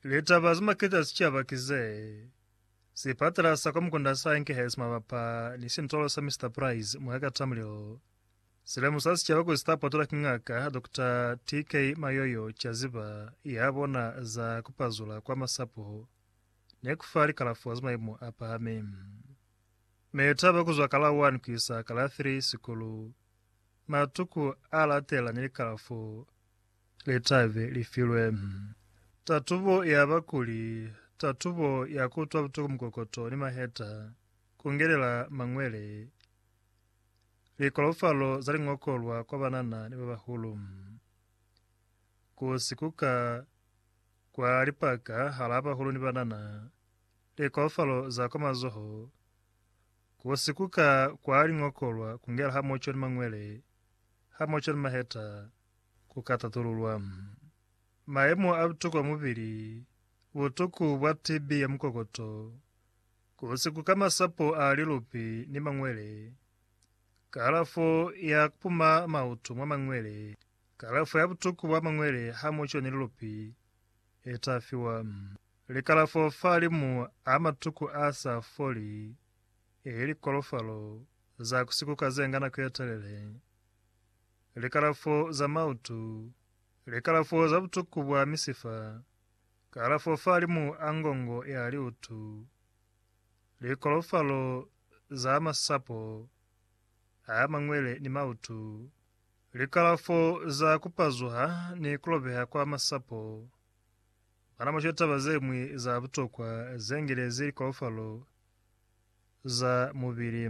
Litaba ze maketa sicaba ki ze, Sipatala sa kwa Mukunda sa inkehezi mabapa ni sintolo sa Mister Price mwa ka Tamrill. Si lemusa sicaba kuli si ta potolwa ki Ngaka Doctor TK Mayoyo ca ziba ya bona za ku pazula kwa masapo ni ku fa likalafo za maimo a pahami. Mitaba ku zwa ka la 1 ku isa ka la 3 sikulu, matuku a latelela ni likalafo litabe li filwe tatubo ya bakuli, tatubo ya kutwa butuku mukokoto ni maheta, kungelela mangwele, likolofalo za lingokolwa kwa banana ni babahulu, ku sikuka kwa lipaka hala bahulu ni banana, likolofalo za kwa mazoho, ku sikuka kwa lingokolwa kungela hamoco ni mangwele, hamoco ni maheta, Ku ka tatululwa mayemo a butukwa mubili, butuku bwa TB ya mukokoto, ku sikuka masapo a lilupi ni mangwele, kalafo ya ku puma mautu mwa mangwele, kalafo ya butuku bwa mangwele hamoco ni lilupi le ta fiwa, likalafo fahalimu a matuku a sa foli, eli kolofalo za ku sikuka ze nga nako ye telele. likalafo za mautu, likalafo za butuku bwa misifa, kalafo fahalimu a ngongo ya liutu, likolofalo za masapo a mañwele ni mautu, likalafo za kupazuha ni kulobeha kwa masapo. Bana mushe taba ze ñwi za butokwa ze ngilezi likolofalo za mubili.